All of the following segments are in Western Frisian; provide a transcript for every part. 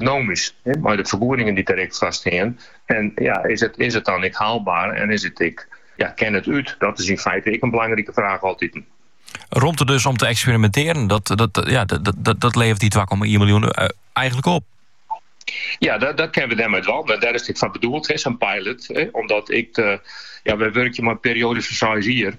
ekonomysk mei de fergoedingen dy't der ek foar stean. En ja, is it, is it dan ek haalbaar en is it ek, ja, kin it út? Dat is yn feite ek in belangrike fraach altiten. Romte dus om te eksperimentearjen, dat, dat, ja, dat, dat, dat levert dy 2,1 miljoen eh, eigenlik op. Ja, dat, dat kinne we dêrmei wol. Dêr is it ek foar bedoeld, sa'n pilot. Hè, omdat ik, de, ja, wy wurkje mei perioades fan 6 jier.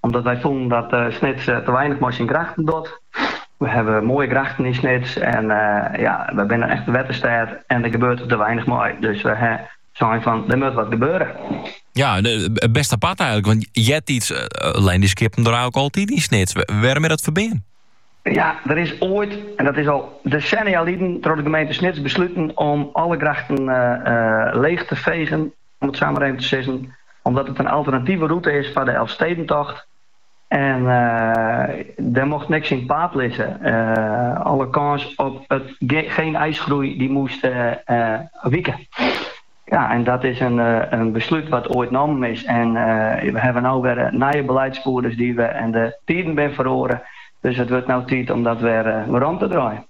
Omdat wy fûnen dat Snits te weinich mei syn grachten docht. We hawwe moaie grachten yn Snits en ja, we binne in echte wetterstêd en der gebeurde te weinich mei. Dus we ha sein fan, der moat wat gebeure. Ja, bêst apart eigenlik, want eartiids leine dy skippen der eigenlik altyd yn Snits. Wêrom is dat ferbean? Ja, der is oait, en dat is al desennia lyn, troch de gemeente Snits besluten om alle grachten leech te fegen. om it sa mar even te sizzen, omdat it in alternative rûte is foar de Elfstedentocht. En dêr mocht niks yn it paad lizze. Alle kâns op it gjin iisgroei dy moest wike. Ja, en dat is in beslút wat oait nommen is. En we hawwe no wer nije beleidsfierders dy't we en de tiden binne feroare. Dus it wurdt no tiid om dat wer werom te draaien.